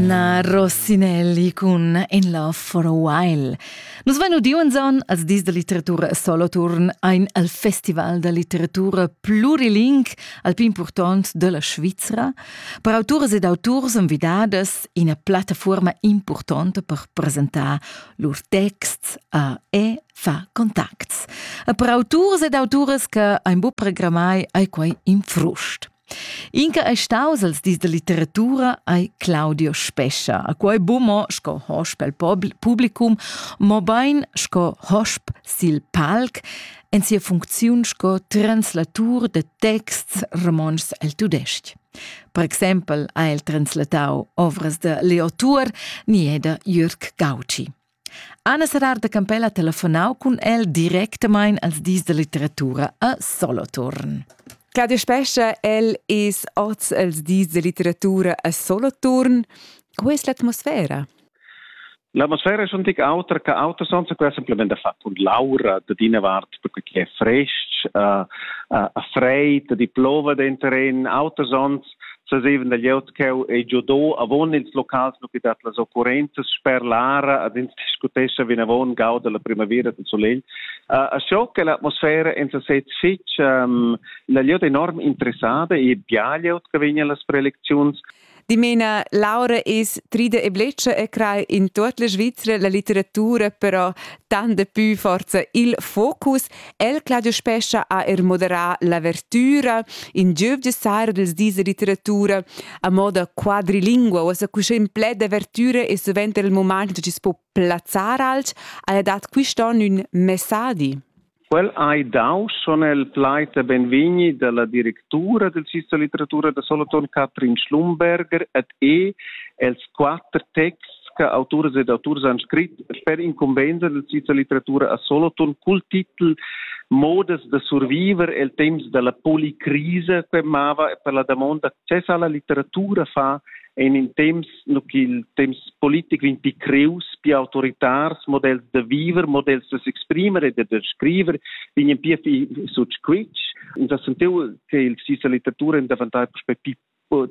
Na Rossinelli cun In Love for a While. Nus vein udiu enzaun als dis da litteratura Soloturn ein al Festival da litteratura pluriling al pli impurtont della Svizra per autoras ed auturs envidadas ina plattafuorma importanta per presentar lur texts a e fa contacts. E per autors ed autoras che ein bu programmai ai quei in frust. Inca ei staus els dis da litteratura ei Claudio Spescha. A quei bu mo sco hosp el publicum, mo bein sco hosp sil palc en sia funcziun sco translatur de texts romonschs el tudestg. Per exempel ha el translatau ovras de Leo Tuor ni da Jürg Gauci. Anna Serrar da Campella ha telefonau cun el directamein als dis da litteratura a Soloturn. Claudia Spescha, el es oz els dis da litteratura a Soloturn. Qual es l'atmosfera? L'atmosfera è schon tic autra che auter sonsa quella semplament da far und Laura da dina vart perché è frestg, uh, uh, ha freit, di plova dentro in auter sons sazevan da glieud cheu ei giudau avon ils locals nu dat las occurrenzas sper l'ara ad ins discutescha vinavon gau dalla primavera del solegl uh, a scho che l'atmosfera en sesez fitch um, la glieud enorm interessada e bia glieud che vegna las prelecziuns Dimena, Laura es trida e bletscha e crai in tut la Svizzera la litteratura però tant da pü forza il focus. El Claudio Spescha ha er moderà l'avertüra, in giöv de sara dels dis de literatura a moda quadrilingua, o sa cusche in pled d'avertüra e suvent er il moment che si po plazzar alch, ha dat quist'on ün messadi. Quel hai dau son el plait a benvegni dalla directura del Sista Literatura da Solothurn Katrin Schlumberger et e els quatter texts che autors ed auturs han scrit per incumbensa della Svizra Litteratura a Solothurn cul titel Modas da surviver el temps dalla policrisa che mava per la damonda access alla litteratura fa en in temps no il temps politico in pi creus, pi autoritars, models da viver, models da s'exprimer e da scriver, vegn pia fi sut squitsch. Da sentiu che il Svizra Litteratura in davantar prospectiv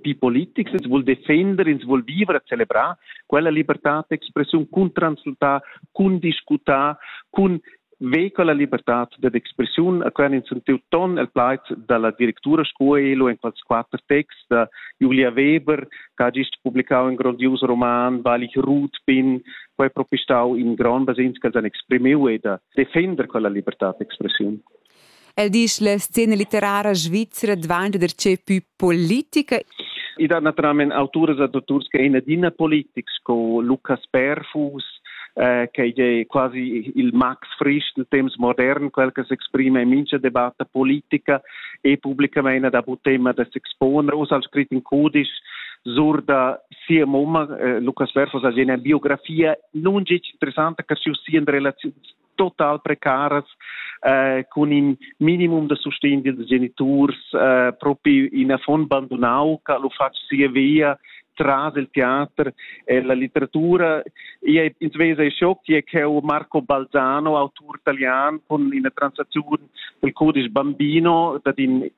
die Politics, ins vul defender, ins vul vivere, celebrar quella libertad d'expressiun cun transultar, cun discutar, cun vehicola libertad d'expressiun, a quern ins sentiu ton el plaid dalla directura Scuelo en quels quater texts da Julia Weber, che ha gist publicau in grondius roman, Balich Ruth bin, poi propistau in grond basins che han exprimiu e da defender quella libertad d'expressiun. El disch la scena litterara svizra dvanta darcheu pü politica. I dat naturalmein autoras e dotturs che in adina politics sco Lucas Perfus, eh, che è quasi il Max Frisch del temps modern, quel che s'exprime in mincha debatta politica e pubblicamente da bu tema da s'exponer, us al scrit in cudisch sur da sia mamma, eh, Lucas Perfus, ha una biografia non già interessante che su sia relazioni total precaras eh, cun in minimum da sustegn dils geniturs eh, propi in affon bandunau che lu fatg sia via tras il teater e la letteratura. Io ins vesa e schoc che cheu Marco Balzano, autur italian, con ina transazione del codice bambino, dat in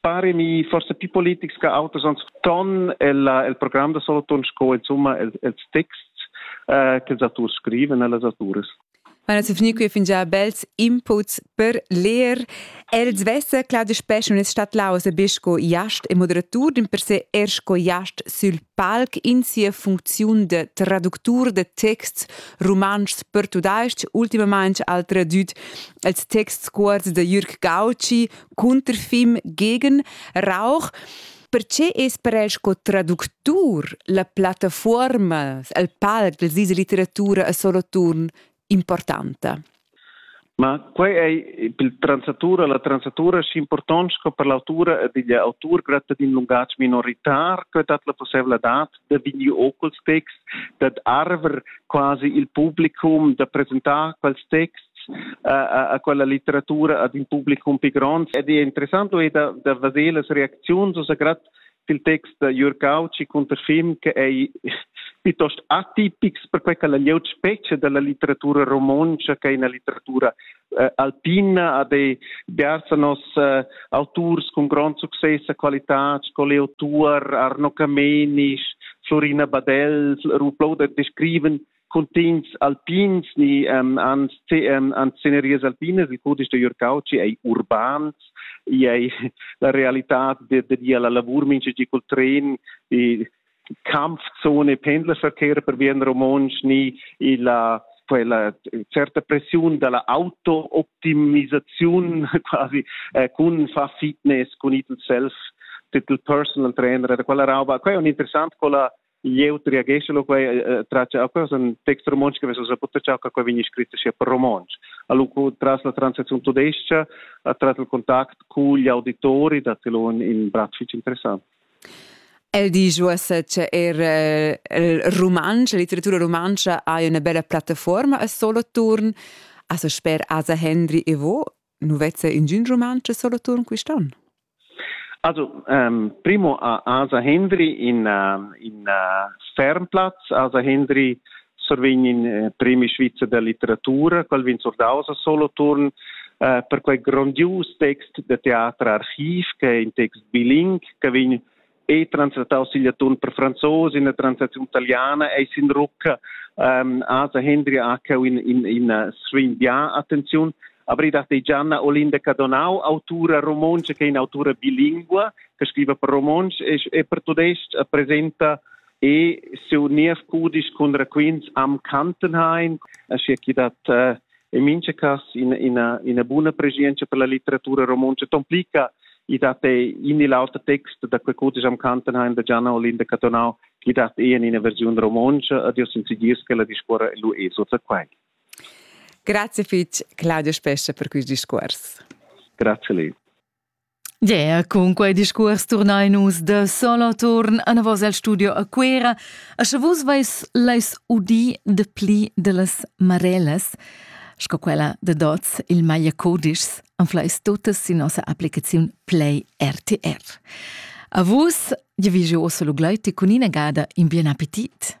paremi forse più politics che autos ons ton el, el programm da Solothurn sco insomma els, els texts eh, che els autors scriven e las autores. Ma non si finì qui fin già bels inputs per leer. El svesse clar de spes non es stat lause besco iast e moderatur din per se ersko iast sul palc in sia funziun de traductur de texts romanschs per tudaisch, ultimamente al tradüt els texts cuorts de Jürg Gauci, Cunterfim gegen Rauch. Perché es per el sco traductur la plattafuorma, il palc della svizra litteratura a Soloturn importanta? Ma quei ei per transatura, la transatura schi important sco per l'autura ed igl autur gratta d'in lungatg minoritar, che dat la possibla dat da vegni ocul texts, dad arver quasi il publicum da presentar quels texts a, a quella litteratura ad in publicum pi grond. Ed è interessant è da, da vedere las reacziuns, also gerade il text da Jürg Kautschi cunter film che è piuttosto atipics per quella glieud specie della litteratura romontsch che è una litteratura eh, alpina ad ei dersa nos eh, auturs cun grond success e qualitad sco Leo Tuor, Arno Camenisch, Florina Badell, Ruplou der descriven cuntigns alpins ni um, an, um, an sceneries alpinas, il cudisch de Jörg Cauci ei urbans, ei la realitad de, de, de la lavur mincha di col tren e Kampfzone Pendlerverkehr per bien romontsch ni illa quella certa pressiun dalla auto-optimisaziun quasi eh, cun fa fitness cun it self titel personal trainer da quella rauba quella è interessant quella jeu triagesce lo quei traccia quella un text romontsch che vesa poter ciao che vegni scritto sia per romontsch allo tras la transazione tudesca tras il contact con gli auditori da telon in bratfic interessant El disch uossa cha eir il rumantsch, la litteratura rumantscha haja üna bella plattafuorma a Soloturn. Asa sper Asa Hendry e vo, nu vezza ingün rumantsch a Soloturn quist'on? Also, ähm, primo ha Asa Hendry in, äh, in äh, Sternplatz. Asa Hendry survegnin eh, premi svizzer da litteratura, quel vegn surdaus a solo turn eh, per quei grondius text de teatr archiv che è in text biling che vegn e translataus sigl atun per franzos in la translazione italiana e sin rucca um, asa Hendri Akau in in in svin dia attenzione abri dat Gianna Olinda Cadonau autura romonce che è in autura bilingua che scrive per romonsch e, e per tudesc presenta e sur nies cudisch cun raquints am Kantenhain, aschia che dat uh, in mincha cas ina, ina, ina buna preschientscha per la litteratura romontscha. Tomplica i dat ei in il auter text da quei cudisch am Kantenhain da Gianna Olinda Catonau che dat ei in ina versiun romontscha ad io sincegies che la discuora lu e sutta quai. Grazie fitg Claudio Spescha per questi discuors. Grazie lei. Yeah, cun quei discuors turnein nus da solo turn anavos el studio a Cuera. A sche vus veis leis udi de pli dellas marelas, sco quella de dots il maglia codischs, anfleis totas sin nossa applicaziun Play RTR. A vus, ja vi jeu osso lo gleiti cun ina gada in bien appetit.